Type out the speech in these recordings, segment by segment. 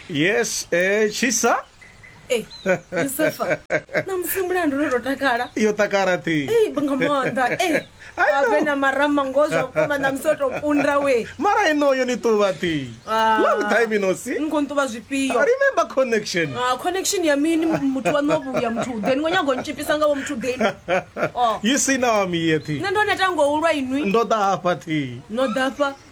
yes eh, tshisa Ei, Yusufa, namusi mulandu ndo ndo takala yo takala ti Ei, nga maanḓa ei, I know. avhe na marama ngoho zwa vhukuma namusi o tou kunda we mara inoyo ni tuva ti Ah. long time inosi ni khou nṱuvha zwifhio remember connection Ah, connection ya mini muthu waṋu wa vhuya muthu uḓeni ngo nyago ntshipisa ngavho muthu uḓeni Oh. you see now I'm here ti nṋe ndo neta ngo ulwa inwi ndo ḓa hafha ti no ḓafha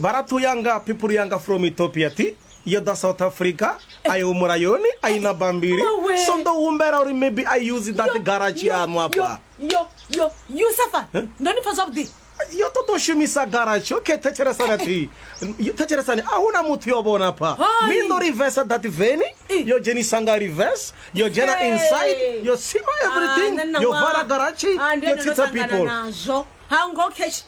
Baratu yanga, people yanga from Ethiopia ti yoda South Africa I humura yoni I na bambiri so ndo humbela uri maybe I use that garage yanu apa yo yo you suffer huh? ndoni pfa zwavhuḓi yo ṱoḓa u shumisa garage okay thetshelesana thi thetshelesani a huna muthu yo vhona pha mi ndo reverse that veni yo dzhenisa nga reverse yo dzhena inside yo sima everything ah, yo vala garage yo tsitsa people hango cash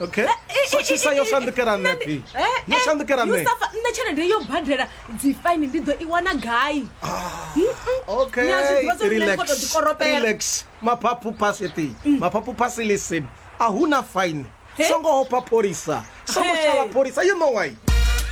okay so tshisa yo shandukela nṋe phi yo shandukela nṋe yusafa nṋe tshelede yo badela dzi fine ndi ḓo i wana gai okay relax relax maphaphu phasi ti maphaphu phasi listen a huna fine songo hopha pholisa songo shala pholisa you know why